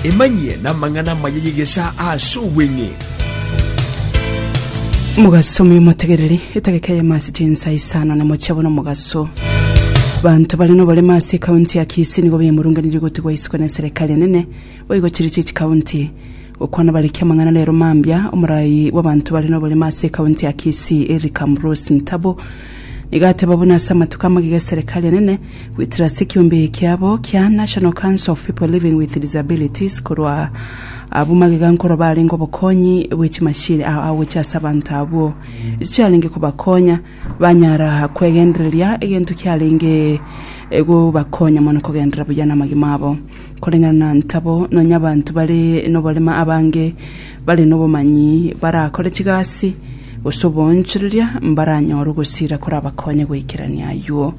Emanyie namang'ana amaya y'egesaa ase obweng'e. Mogaso omoyo motegereri etageka eyemo ase chinsa isano na mochia bono mogaso banto bare noboremo ase ekaunti ya kisii nigo bemurunganirie gotigwa isiko ne serikali enene boigo chiri chichi kaunti Gokwana Bariki Amang'ana Rero Mambia, Omoraai bw'abanto bare noborimo ase ekaunti ya Kisii Eric Ambrose Ntabo nigo ateba buna ase amatuko amagega eserekari enene goetera ase ekiombe ekiabo kia National Council of People Living with Disabilities korwa abwo magega nkoro barenge obokonyi bwe chimashini ao agocha ase abanto abwo echiarenge kobakonya banyara kwegendereria egento kiarenge gobakonya mono kogenderera buya namagima abo. Koreng'ana na ntabo, nonya abanto bare noborema abange bare nobomanyi barakore chigasi gose oboonchoreria mbaranyore ogosiira korabakonye goikerania ayuo.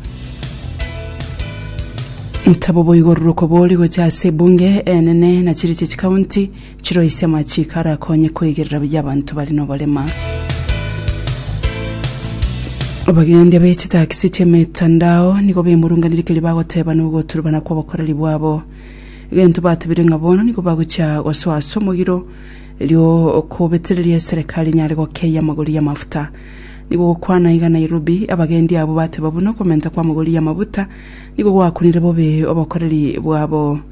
Ntabo boigo ruroko bori gocha ase ebunge enene na chiriche chikaunti Chiroi chi'amachiko arakonye koigerera buya abanto bare noborema. Abagendia be chitakisi chi'emetandao nigo bemurunganire keria bagoteba nogoturubana kw'obokoreri bwabo. Egento batebire ng'a bono nigo bagochia gosoa ase omogiro erio okobetereria eserekari enyare gokeia amagori y'amafuta. Nigo gokwana iga Nairobi, abagendia abwo bateba buna okomenta kw'amagori y'amafuta nigo gwakunire bobe obokoreri bwabo.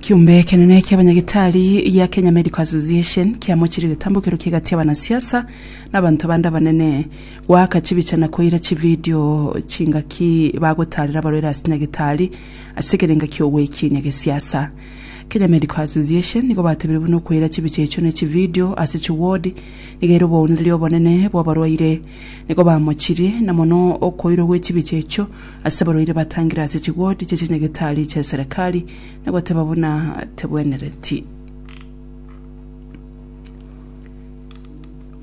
Kiombe ekenene kia abanyagitari gia Kenya Medical Association kiamochirie getambokero kie egati y'abanasiasa na abanto bande abanene goaka chibicha na koira chividio chingaki bagotarera abarwaire ase nyagitari ase ekerenga ki'ogwekiinia gesiasa. Kenya Medical Association nigo batebirie buna okoira chibicha echio na echividio ase chiwodi nigo ere obounereria obonene bw'abarwaire. Nigo bamochirie na mono okoirwa gwe chibicha echio Ase abarwaire batangire ase chiwodi chie chinyagetari chia eserekari na goteba buna tebwenereti.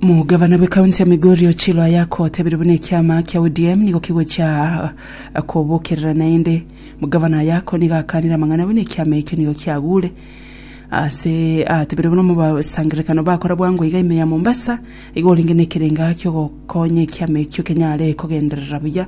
Omogabana bwe county ya Migori Ochilo Ayako otebire buna ekiama kia ODM nigo kigochia kobokerera naende Omogabana Ayako nigo akanire amang'ana buna ekiama ekio nigo kiagure ase atebire buna omobasangererekano bakora bwango iga ime ya Mombasa iga orenge nekerenga kiogokonya ekiama ekio kenyare kogenderera buya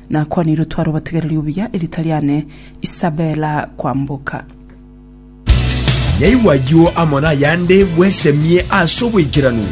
Nakwanire otware obotegereri obuya erita riane Isabella kwamboka. Naigwe ayio amo nayande bwesemie ase oboikeranu.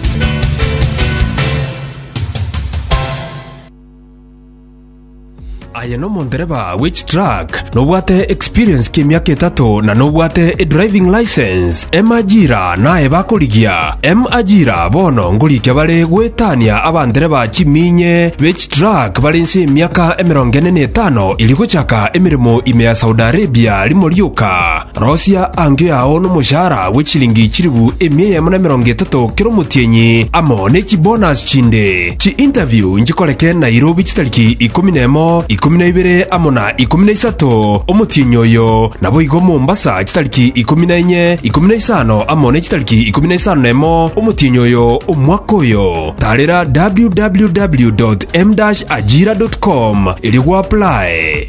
Aye nomondereba wechitruck Nobwate experience ki emiaka etato na nobwate e driving license? M ajira naye bakorigia? M ajira bono ngorikia bare goetania abandereba chiminye be chitruck bare inse y'emiaka emerongo ene na etano iri gochaka emeremo ime ya Saudi Arabia rimo rioka. Rosia ango yao nomoshahara bwe chilingi chilifu emia eyemo na emerongo etato kera omotienyi, amo ne chibonasi chinde. Chiinterview nchikoreke Nairobi chitariki ikomi na emo, ikomi na ibere amo na ikomi na isato omotienyi oyo, naboigo Mombasa chitariki ikomi na enye, ikomi na isano amo ne chitariki ikomi na isano na emo omotienyi oyo omwaka oyo. Tarera www.m-ajira.com erio gwaplae.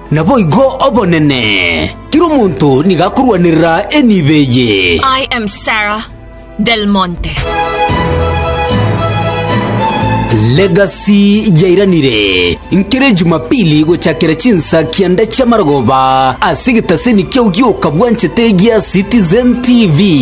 Naboigo obonene, kera omonto nigo akorwanerera enibo eye. I am Sarah Del Monte. Legacy yairanire nkere Ejumapili gochakera chinsa kianda chi'amarogoba ase egetaseni kiao gi'okabwanchete gia Citizen TV.